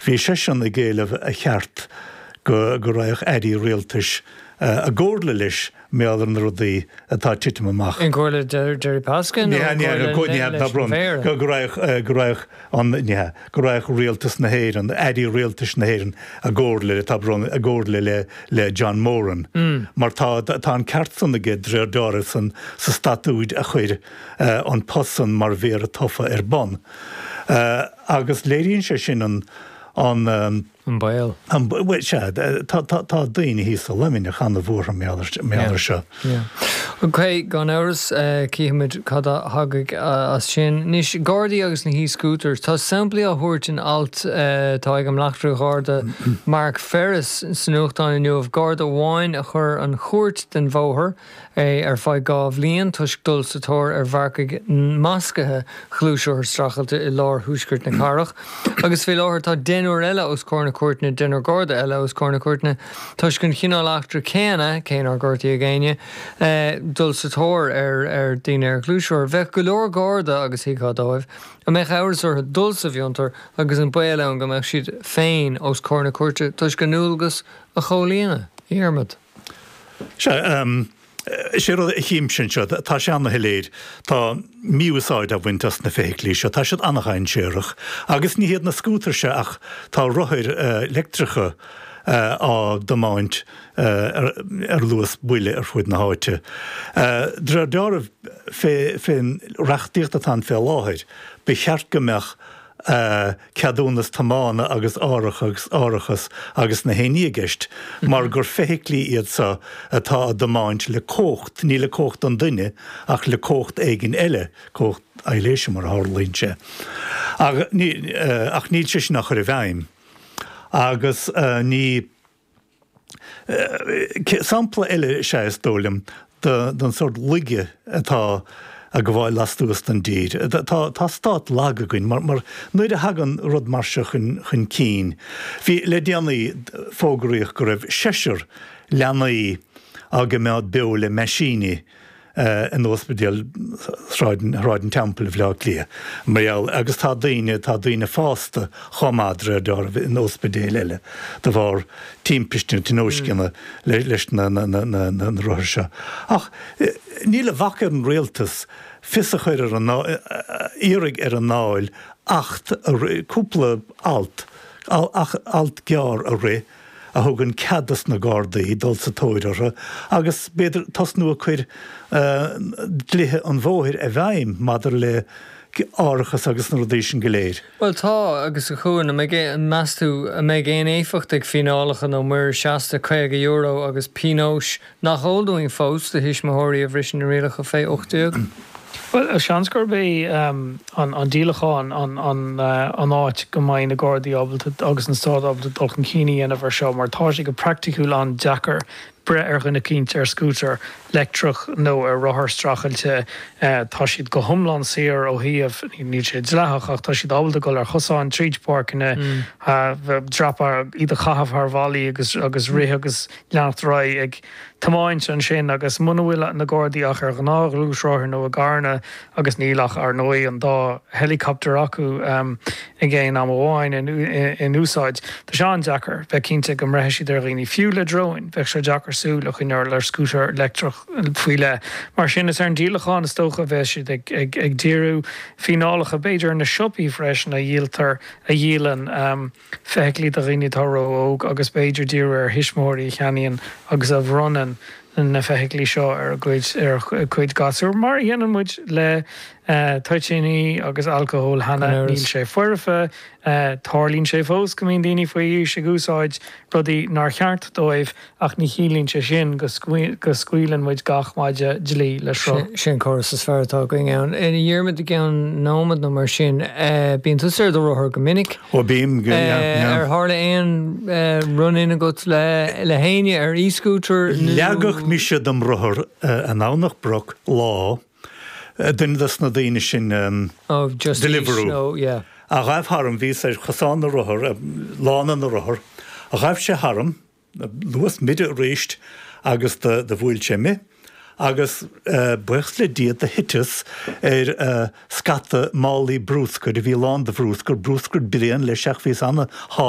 Bhí seisean ag éileamh a cheart go raghadh airí rialtais i gcomhairle leis mar gheall ar na rudaí atá ag titim amach. I gcomhairle Gerry Pasco nó i gcomhairle leis an Mhéara? Go raghadh rialtas na hÉireann, airí rialtais na hÉireann i gcomhairle le John Moran mar tá an ceart san aige de réir dealraimh sa statúid a chuir an post san mar Mhéara tofa ar bun. Agus léiríonn sé sin an, an. An baol. An baol, bhuel, sea, tá daoine thíos i Luimneach ana-bhuartha mar gheall air seo. Ok, gan amhras, cífimid cad a thagadh as sin. Anois, Gardaí agus na he-scooters, tá samplaí á thabhairt in alt atá ag an mBleachtaire Gharda Mark Ferris sa nuachtán inniu, Garda amháin a chuir an chúirt den bhóthar, é ar feadh dhá bhliain toisc dul sa tóir ar mharcaigh mascaithe gluaisrothar streachailte i lár thuaisceart na cathrach agus fé láthair tá deichniúr eile os comhair na cúirteanna deichniúr Garda eile os comhair na cúirteanna toisc an chineál eachtra céanna cé nár gortaíodh éinne dul sa tóir ar daoine ar ghluaisrothair. Bheadh go leor Garda agus thuigfeá dóibh a mbeadh amhras orthu dul sa bhfiontar agus an baol ann go mbeadh siad féin os comhair na cúirte toisc a ndualgas a chomhlíonadh. A Dhiarmaid. Sea, sé rud a chímse anseo, tá sé ana-shoiléir, tá mí-úsáid á bhaint as na feithiclí seo, tá siad ana-dhainséarach. Agus ní hiad na scútair seo ach tá rothair leictreacha á dtiomáint ar luas buile ar fud na háite. De réir dealraimh fén reachtaíocht atá ann fé láthair, ba cheart go mbeadh. ceadúnas tiomána agus árachas, árachas agus gach aon ní i gceist mar gur feithiclí iad seo atá á dtiomáint le cumhacht, ní le cumhacht an duine ach le cumhacht éigin eile, cumhacht aibhléise mar a tharlaíonn sé. Ach níl sé sin á chur i bhfeidhm agus ní. Sampla eile is ea, is dóigh liom, den sórt laige atá ag gabháil lastuas den dtír. Tá stát lag againn mar nuair a thagann rud mar seo chun cinn, bhí, le déanaí fógraíodh go raibh seisear leanaí á gcoimeád beo le meaisíní, in Ospidéal Shráid an Teampaill i mBaile Átha Cliath, mar gheall, agus tá daoine, tá daoine fásta chomh maith, de réir dealraimh, in ospidéil eile de bharr timpiste nó tionóisceana leis na rothair seo. Ach níl a bhac ar an rialtas fios a chur ar an, iarraidh ar an nDáil acht a rith, cúpla alt, alt gearr a rith, a thugann cead dos na Gardaí dul sa tóir orthu agus b'fhéidir tosnú ag cur dlithe an bhóthair i bhfeidhm maidir le árachas agus na rudaí sin go léir. Bhuel, agus a Chuan, an mbeidh aon, meas tú, an mbeidh aon éifeacht ag fíneálacha nó muirear seasta €50 agus pionóis Nach eol dúinn fós do thuismitheoirí a bhriseann na rialacha fé 18? Bhuel, seans gurb é an díolachán an áit go mbeidh na Gardaí ábalta agus an Stát ábalta dul chun cinn a dhéanamh ar seo mar tá sé go praiticiúil an-deacair breith ar dhuine eicínt ar scútar leictreach nó ar rothar streachailte. Tá siad go hiomlán saor ó shriain, níl sé dleathach ach tá siad ábalta dul ar chosáin, tríd páirceanna, dreapadh, iad a chaitheamh thar bhalla agus rith agus. leanacht ar aghaidh ag tiomáint ansin agus muna bhfuil na Gardaí ach ar ghnáth-ghluaisrothair nó i gcarranna agus níl ach, ar ndóigh, an dá helicopter acu ag aon am amháin in úsáid, tá sé an-deacair bheith cinnte go mbreithfidh siad ar dhaoine. Fiú le dróin, bheadh sé deacair súil a choinneáil ar scútar leictreach faoi leith. Mar sin, is ar an díolachán is dócha a bheas siad ag díriú, fíneálacha b'fhéidir ar na siopaí freisin a dhíoltar, a dhíolann. feithiclí do dhaoine atá ró-óg agus b'fhéidir díriú ar thuismitheoirí a cheannaíonn agus a bhronnann na feithiclí seo ar a gcuid, ar a gcuid gasúr, mar a dhéanann muid le toitíní agus alcóil cheana. Níl sé foirfe, tarlaíonn sé fós, go mbíonn daoine faoi aois ag úsáid rudaí nár cheart dóibh Ach ní chiallaíonn sé sin go scaoileann muid gach maide dlí le sruth. Sé an córas is fearr atá againn. A Dhiarmaid, i gceann nóiméad nó mar sin, bíonn tusa ar do rothar go minic. Ó bím, yeah. Ar tharla aon run in agat le héinne ar e-scooter nó? Leagfadh mise dem rothar i nDomhnach Broc lá, duine dos na daoine sin Deliveroo, a ghaibh tharam, bhíos ar chosán na rothar, lána na rothar, ghaibh sé tharam. luas mire arís agus do bhuail sé mé agus buíochas le Dia do thiteas ar scata málaí brúscair a bhí lán do bhrúscar, brúscar bréan leis, ach bhíos ana shá.